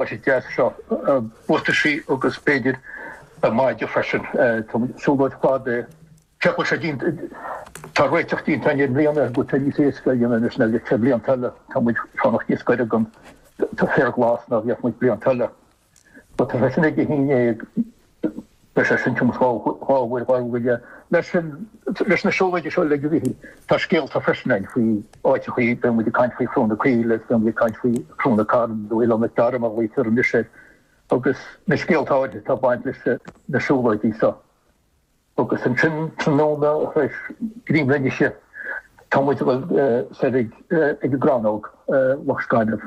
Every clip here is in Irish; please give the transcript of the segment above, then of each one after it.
Tá sé deas seo. Buataisí agus b'fhéidir maide freisin. Tá siúlóid fada é. Ceapadh sé díon. Tá réiteach déanta ann i mbliana go bhfuil sé níos éasca a dhéanamh anois ná bhí sé blianta eile. Tá muid ag fanacht níos gaire don, féar glas ná a bhíodh muid blianta eile. Tá sé sin ag Dé hAoine é. Beidh sé sin tiomanta d'ábhair Ghaeilge. Mar sin, leis na siúlóidí seo le gairid, tá scéalta freisin againn faoi áiteachaí, beidh muid ag caint faoi Chruach na Caoile agus beidh muid ag caint faoi Chruach na Cara, nó Oileán Mhic Dara mar a ghlaoitear anois air, agus na scéalta áirithe atá ag baint leis na siúlóidí seo. Agus ansin tráthnóna tar éis greim le n-ithe, tá muid ag dul soir ag an gcrannóg, Loch Scainimh.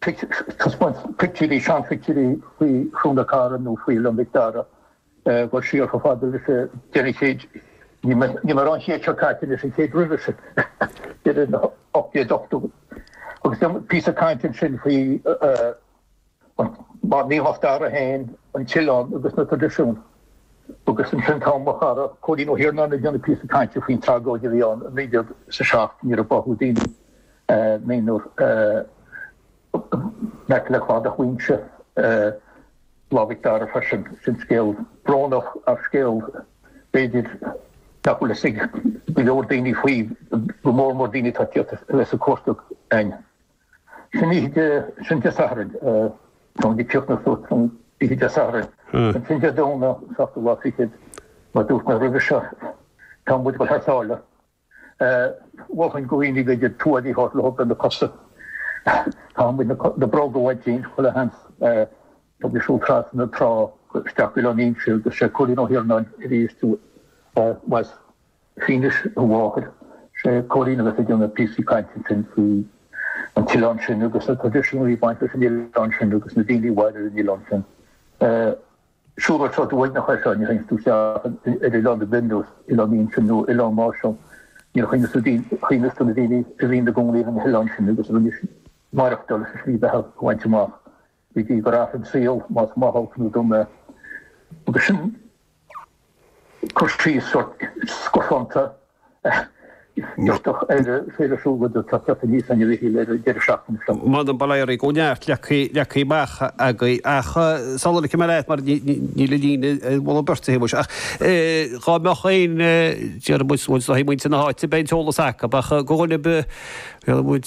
taispeáint pictiúirí, seanphictiúirí faoi Chruach na Cara nó faoi Oileán Mhic Dara, ag dul siar chomh fada leis an deireadh chéid, ní mé an chéad seo caite, leis an chéad roimhe sin, deireadh na 1880idí, agus an píosa cainte ansin faoi Naomh Mac Dara féin, an t-oileán agus na traidisiúin. Agus ansin tá mo chara Cóilín Ó hIarnáin ag déanamh píosa cainte faoin tragóid a bhí ann i 1907 nuair a báthadh daoine. naonúr amuigh le cladach Mhaínse Lá Mhic Dara freisin. Sin scéal brónach ach scéal b'fhéidir nach bhfuil fhios ag go leor daoine faoi, go mór mór daoine atá ag tíocht ar cuairt againn. Sin oíche Dé, sin Dé Sathairn, táim ag críochnú suas, sin oíche Dé Sathairn. Ansin Dé Domhnaigh, seachtú lá fichead, mar dúirt mé roimhe seo, tá muid ag dul thar sáile. Mholfainn do dhaoine tuáille a thabhairt leo do na cosa a thabhairt na bróga uait féin chuile sheans. Tá muid ag siúl trasna an trá isteach go Oileán Fhínse agus sé Cóilín Ó hIarnáin is as Fínis a mháthair. Sé Cóilín a bheas ag déanamh píosaí cainte ansin faoi an t-oileán sin agus na traidisiúin a bhí baint leis an oileán sin agus na daoine a mhair ar an oileán sin. Siúlóid sórt uaigneach é seo, nuair a théann tú isteach ar oileán ar bith ar nós Oileán Fhínse nó Oileán Máisean, nuair a chuimhníos tú ar na daoine a bhí ina gcónaí ar na hoileáin sin agus a rinne maireachtáil is a slí bheatha a bhaint amach go dtí gur athraigh an saol, más maith olc nó dona é. Agus sin. cur síos sórt scafánta a d'fhéadfadh aire a bheith le súil go dtagfaí níos ainmhíche le an deireadh seachtaine seo. Muna mbainfeadh Éirí go neart, leagtha amach againn ach sular fhaighim a leithéid mar níl an líne a mholadh beirt a thaobh. Ach dhá mbeadh aon dearmad, nó dá hí muintir na háite, beidh an t-eolas acu. Ach go bhfuil, bhéarfaidh muid.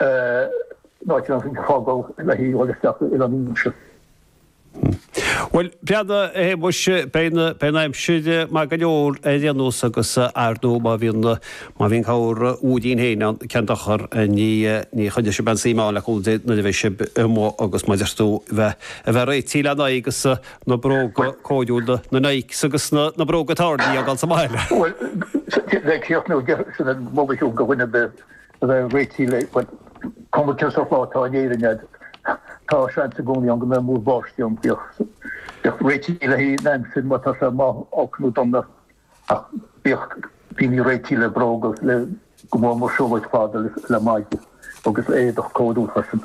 Náisiúnta faoin Phobal i leith a dhíol isteach i Londain an mse. Bhuel, Breandán, hé muise, beidh an aimsir maith go leor ar aon nós agus ar ndóigh má bhíonn, má bhíonn corrmhúirín féin ann, cén dochar, ní, ní chuirfidh sibh aon suim ann le cúnamh Dé nuair a bheidh sibh amuigh agus mar a deir tú a bheith, a bheith réitithe lena aghaidh agus na bróga cóiriúla, na Nikes agus na, na bróga tairní a fhágáil sa mbaile. Bhuel, bheadh críoch nó deich, sin an moladh siúd, go bhfuinneamh bith. a bheith réitithe le, cuma cén sórt lá atá in Éirinn agat, tá seans i gcónaí ann go mbeidh múr báistí ann. Bíodh réitithe le haghaidh an aimsir má tá sé maith, olc nó dona, ach bíodh daoine réitithe le bróga, le go mór mór siúlóid fada, le maide agus éadach cóiriúil freisin.